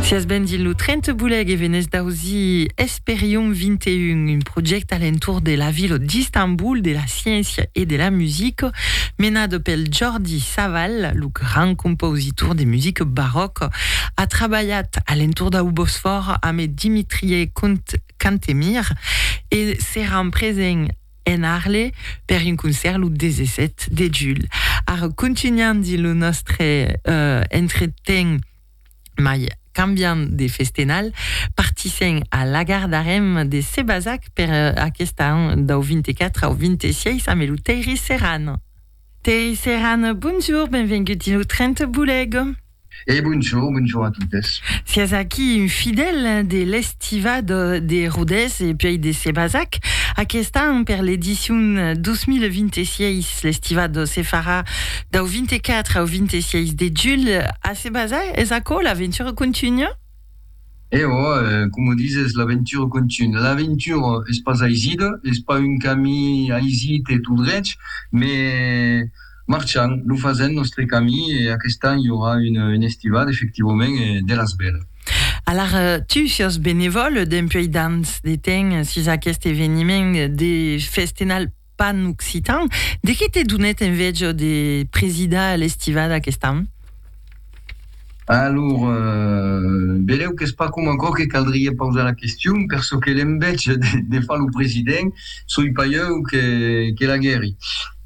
Sias benvit lo 30 bulèc e venètz d'ausir Esperion 21, un projècte a l'entorn de la vila d'Istanbul, de la sciéncia e de la musica, menat pel Jordi Savall, lo grand compositor de musica baròca. A trabalhat a l'entorn dau Bosfòr amé Dimitrie Cantemir e seràn presents. en Arle per un concèrt lo 17 de julh. Ara contunhandi lo nòstre entreten mai cambiant de festenal, partissèm a Lagar d'Arèm de Sebazac per aquest an dau 24 au 26 amé lo Tèiri Serran. Tèiri Serran, bonjour, benvengut dins lo tren te boulèg. E bonjor, bonjor a totes. Siás aquí un fidèl de l'Estiva de Rodés e puèi de Sebazac. Aquest an, per l'edicion 2026, l'Estiva se farà dau 24 au 26 de julh a Sebazac. Es aquò, l'aventura contunha? E ò, coma dizes, l'aventura contunha. L'aventura es pas aisida, es pas un camin aisit e tot drech, me marchan, lo fasèm, nòstre camin, e aquest an i aurà una estivada, efectivament, de las bèlas. Alar tu siás benevòl, dempuèi damb de temps, sus aquest eveniment de festenal Pan occitan, de qué te donèt enveja de presidar l'estivada aquest an? Alor, velèu qu'es pas coma aquò que caldriá pausar la question, per çò que l'enveja de far lo president, soi pas ieu que l'aguèri.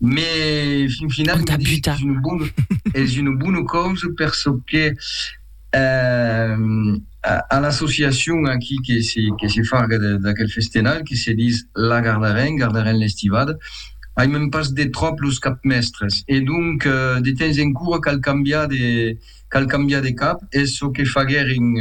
Mé fin final, me disic qu'es una bona causa per çò que, A l'associacion aquí que se farga d'aquel festenal, que se dis La Gardarèn, Gardarèn l'estivada, aimem pas de tròp los capmèstres e donc de temps en cura cal cambiar de cal cambiar de cap, es çò que faguèrin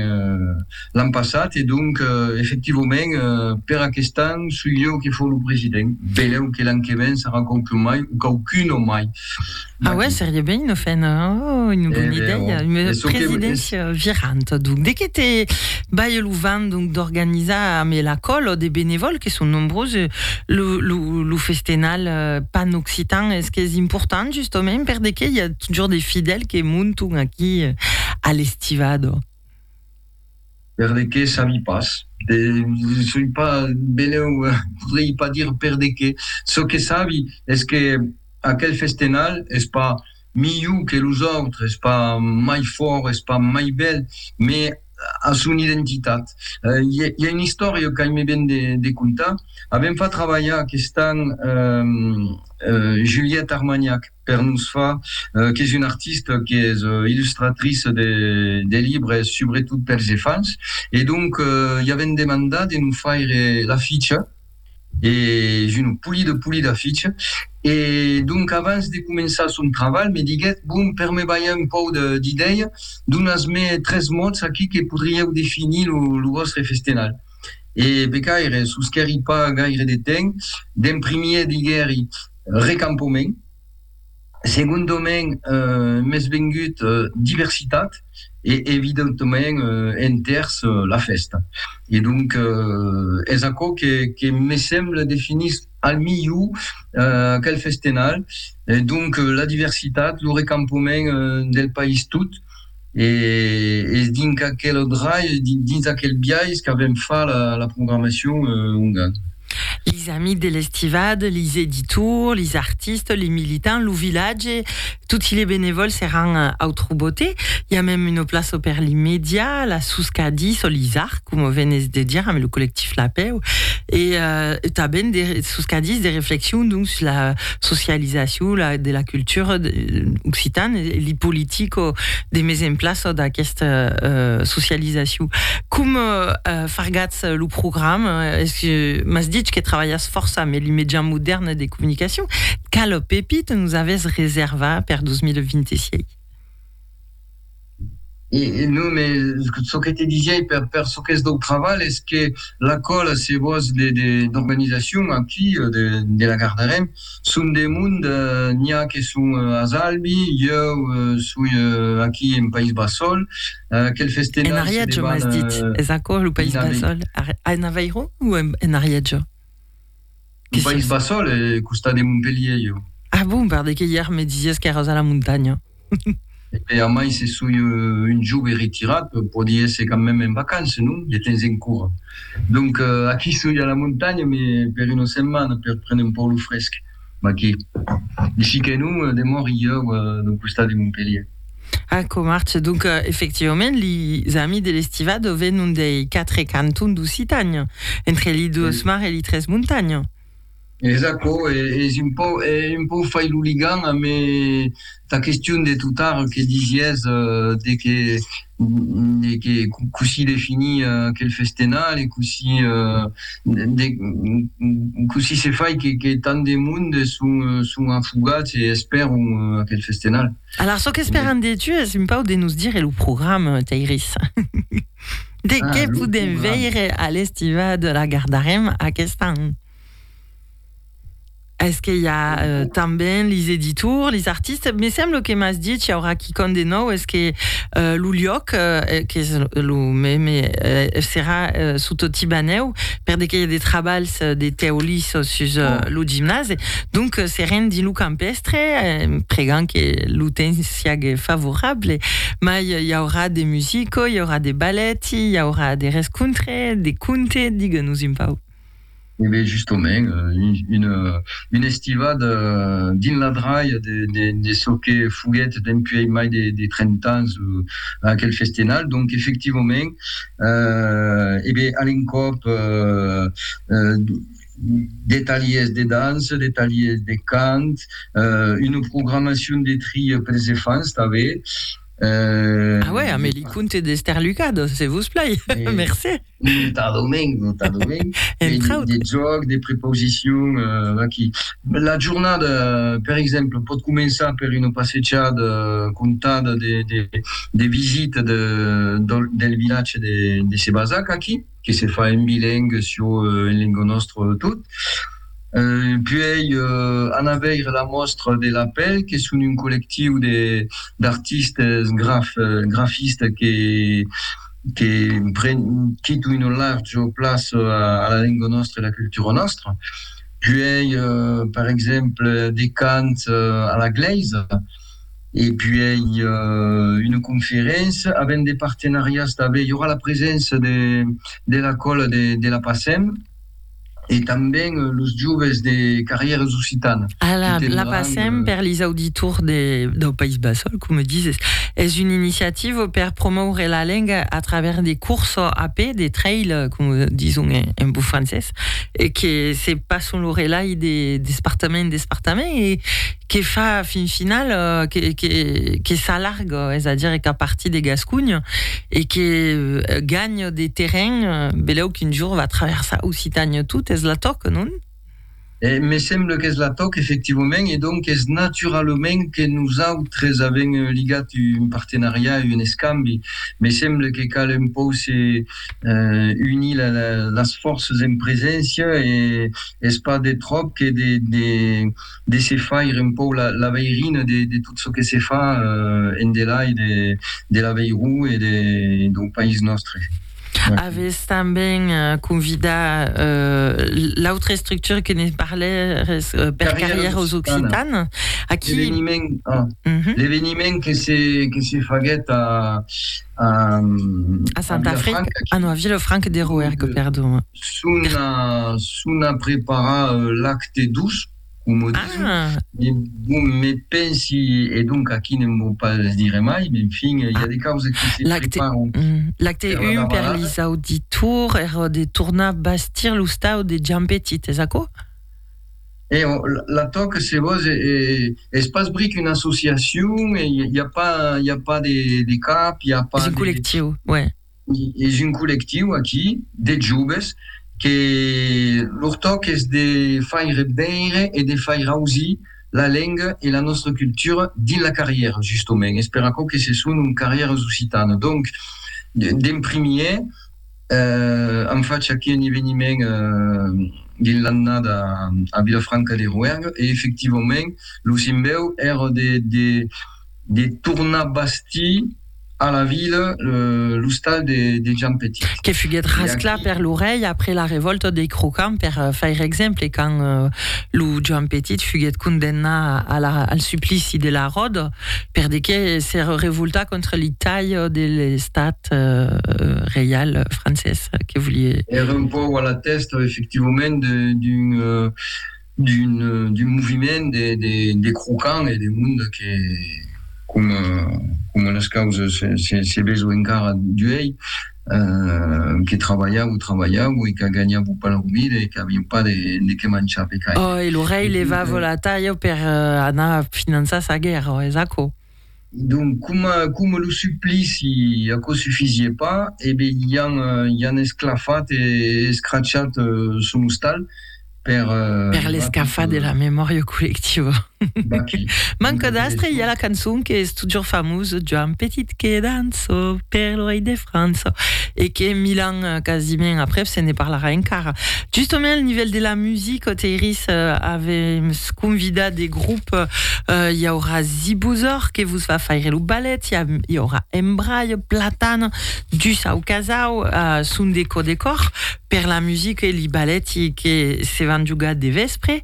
l'an passat e donc efectivament per aquest an soi jo que fò lo president, benlèu que l'an que ven sarà quauqu'un mai o quauqu'una mai. Ah ouais, seria ben una fena, oh, una bona eh idèia, oh. una presidéncia que... viranta. Donc, de que te bai lo vent donc d'organizar amb la còlo de benevòls que son nombroses lo, lo, lo festenal euh, pan occitan, es que es important justament per de que i a toujours des fidèles que monton aquí euh, a l'estivado. Per de qué sabi pas. Soi pas beneu, podrei pas dir per de qué. Çò que sabi es que aquel festenal es pas milhor que los autres, es pas mai fòrt, es pas mai bèl, me a son identitat. I a una istòria qu'aime ben de contar. Avèm fa trabalhar aqueste an Juliette Armagnac. per nos far qu'es una artista qu'es illustratrice de de libres subretot pels efants e donc i avèm demandat de nos faire l'aficha e es una polida polida aficha e donc avans de començar son trabalh me diguèt bon per me balhar un pauc d'idèia donas me tres mots aquí que podrieu definir lo lo vòstre festenalh e becaire sosquèri pas gaire de temps d'en primièr diguèri recampament, segondament m'es vengut diversitat e evidentament enters la fèsta e donc es aquò que me semble definís al milhor aquel festenal, donc la diversitat, lo recampament del país tot. e es dinc aquel drai, dins aquel biais qu'avèm far la programacion ongan. Lis amics de l'estivada, lis editors, lis artistas, les militants, lo vilatge, toti les benevòls seràn au Trobote. I a mèm una plaça per li media, la Suscadie, çò lis arts, coma venètz de dire, amb lo collectif Lapèu, e tanben de Suscadis de reflexion, donc, sus la socializacion la, de la cultura occitana e li politico de mes en plaça d'aquesta euh, socializacion. Com euh, fargatz lo programa? Es que m'as ditz que trabalhas fòrça amb li mejans modèrnes de comunicacion. Quala pepita nos avètz reservar per 2026? E non, me çò que te disiái per çò qu'es dau travalh es que la còla, se vòs, d'organizacion aquí de la Gardarèm son de mond, n'i a que son as Albi, ieu soi aquí en País Basòl, aquel festenal se debanha dins una... En Ariègia, m'as dit? Es aquò lo País Basòl? En Avairon o en Ariègia? Lo País Basol e costat de Montpellier, jo. Ah bon, per de que ièr me disies qu'èras a la montanha. E bè, amai se soi un jove retirat, pòdi èsser quand mème en vacances, non? De temps en cor. Donc, aquí soi a la montanha, me per una setmana, per prene un pauc lo fresc. Maqui. Ici que non, demòri ieu d'un costat de Montpelhier. Ah, com arch! Donc, efectivament, lis amis de l'estivado venon dei quatre cantons d'Occitània, entre li duos mar e li tres montanha. Es aquò, e es un pauc, un pauc fai lo ligam amb Tà question de tot ar que disies de que de que cossí definir aquel festenal e cossí de cossí se fai que que tant de monde son son afogats e espèron aquel festenal. Alar çò qu'espèran de tu es un pauc de nos dire lo programa, Tairis. De qué podem veire a l'Estivada? La gardarem aquest an. Est-ce que i a euh, tanben lis editors, lis artistes? Me semblo que m'as dit, i aurà quicòm de nòu, est-ce que euh, lo luòc, euh, qu'es lo meme, euh, serà euh, sota lo Tibanèu, per de qu'i a de trabalhs de tèu lis sus euh, lo gimnase, donc euh, serem dins lo campèstre, en pregant que lo temps siague favorable, mai i aurà de musico, i aurà de balèti, i aurà de rescontre, de conte, digue-nos un pauc. E ben justement, un estivat dins la dralha de çò que foguèt dempuèi mai de 30 ans aquel festenal. Donc efectivament, e ben a l'encòp de talhièrs de dança, de talhièrs de cant, una programacion de trilha pels enfants tanben. A uèi, amé li conte d'Estèr Lucà, donc se vos plai. Mercé. Non t'adomenc, non t'adomenc. Entrau. De jòc, de prepausicion, vaquí. La jornada, per exemple, pòt començar per una passejada contada de visita del vilatge de Sebazac, aquí. que se fa en bilingue sio en lengo nòstre tot. Puèi anar veire la mòstra de La Pèl, que son un collectiu d'artistes grafistes que que pren totun una larja plaça a la lenga nòstra e a la cultura nòstra. Puèi, per exemple, de cant a la glèisa. e puèi una conferéncia avent de partenariats tanben i aurà la preséncia de la còla de la Pacem e tanben los joves de Carrières Occitanes. Ala, la Pacem, per lis auditors dau País Basòl, coma dises, es una iniciativa per promòure la lenga a travèrs de courses a pè, de trail, coma dison en bon francés. e que se passon lo relai de despartament en despartament e que fa fin final que s'alarga, es a dire qu'a partir de Gascunh e que ganha de terren, belèu qu'un jorn va traversar Occitània tot, es la tòca, non? Me semble qu'es la tòca, efectivament, e donc es naturalament que nosautres avèm ligat un partenariat, un escambi. Me semble que cal un pòu se unir las fòrças en preséncia e es pas de tròp que de se faire un pauc la veirina de tot çò que se fa endelai de l'Aveiró e dau país nòstre. Avètz tanben convidat l'autra estructura que ne parlères per Carrièras Occitanes. L'eveniment que se faguèt a A Santa Franca, a no, a Vilafranca de Rouergue, perdon. Sona, sona preparar lacte doç, coma dison. Ah! Bon, me pensi, e donc aquí ne'n vò pas dire mai, men fin, i a de causas que se preparan. Lacte, lacte un per lis auditours, era de tornar bastir lo stau de Giampetit, es aquò? E o, la tòca se vos e es pas bric una associacion, e i a pas, i a pas de cap, i a pas de. Es un collectiu, uè. Es un collectiu aquí de joves que lor tòc es de faire veire e de faire ausir la lenga e la nòstra cultura dins la carrièra, justement. Es per aquò que se son un carrièras occitanas. Donc, d'en primièr, An fach aquí un eveniment dins l'annada a Vilafranca de Roergue e efectivament lo simbèu èra de tornar bastir a la vila l'ostal de Jean Petit. Que foguèt rasclat per lo rei après la revòlta dei Crocans per faire exemple quand lo Jean Petit foguèt condemnat al suplici de la ròda per de qué s'èra revoltat contra li talh de l'estat. estat reial francés que volie. Ère un pauc a la tèsta, efectivament, d'un d'un moviment de de de crocants e de monde que, coma coma las causas se se se veso encara d'uèi, que trabalhavo, trabalhavo e que ganhavo pas la comida e qu'avián pas de de qué manchar pe caire. Ò, e lo rei levava la talha per anar finançar sa guèrra, es aquò? Donc coma, coma lo suplici aquò sufisie pas, e be i an, i an esclafat e escrachat son ostal per. Per l'escafar de la memòria collectiva. Manca d'astre, i a la cançon qu'es totjorfamosa, Joan Petit que dança. França, per lo rei de França, e que mil ans quasiment aprèp se ne parlarà encara. Justament al nivèl de la musica, Teiris avèm convidat de grup, i aurà Zibuzor que vos va faire lo ballet, i aurà Embraio, Platana, Dus au Casau, son de cò de còr per la musica e li balleti que se van jogar de vèspre.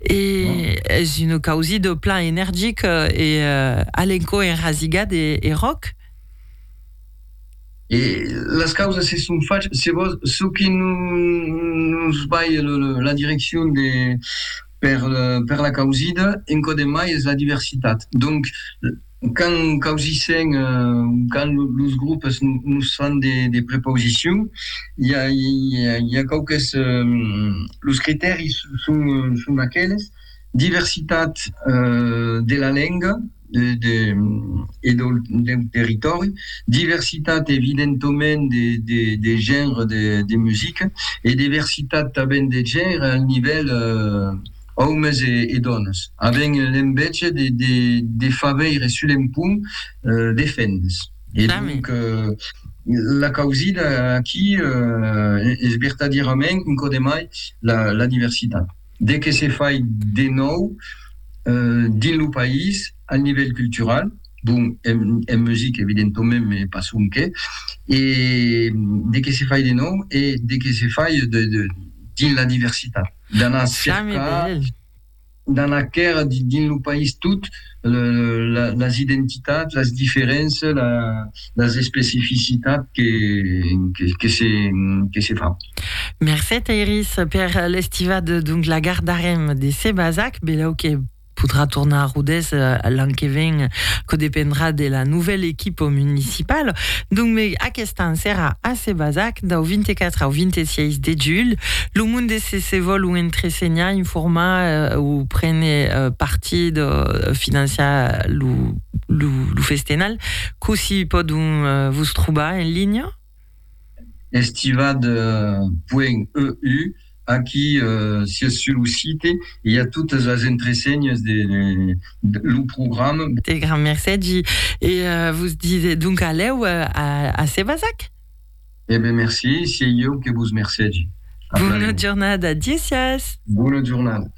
E es un causido plan energic e alenco enrasigat e ròc. E las causas se son fach, se vos, çò que nos bai la direccion de per la causida, encoden mai es la diversitat. Donc. Quand causissèm, quand los groupes nos fan de prepausicion, i a quauques, los critèris son aqueles, diversitat de la lenga e deu territòri, diversitat evidentoment de genre de musica e diversitat tanben de genre al nivèl Òmes e dònas, avèn l'enveja de far veire sul empont de fendes. E donc, la causida aquí es vertadierament un còp de mai la diversitat. De que se fai de nòu dins lo país al nivèl cultural, bon, en musica evidentament, mai pas sonque, e de que se fai de nòu e de que se fai dins la diversitat. D'anar cercar, d'anar quèr dins lo país tot, las identitats, las diferences, las especificitats que se fa. Mercé Tairis per l'estivada, donc la gardarem de se basac, belèu que. podrà tornar a Rodés l'an que ven, que dependrà de la novèl equipa municipala. Donc me aquest an serà a Sebazac dau 24 au 26 de julh. Lo monde se se vòl o entresenhar, informar o prene partit, financiar lo festenal, cossí pòdon vos trobar en linha? Estivat puènh EU, aquí sies sul lo site e i a totes las entresenhes de lo program. Te grand mercègi e vos dise donc alèu a Sebazac. E ben merci, siei ieu que vos mercègi. Bona jornada, Diesias. Bona jornada.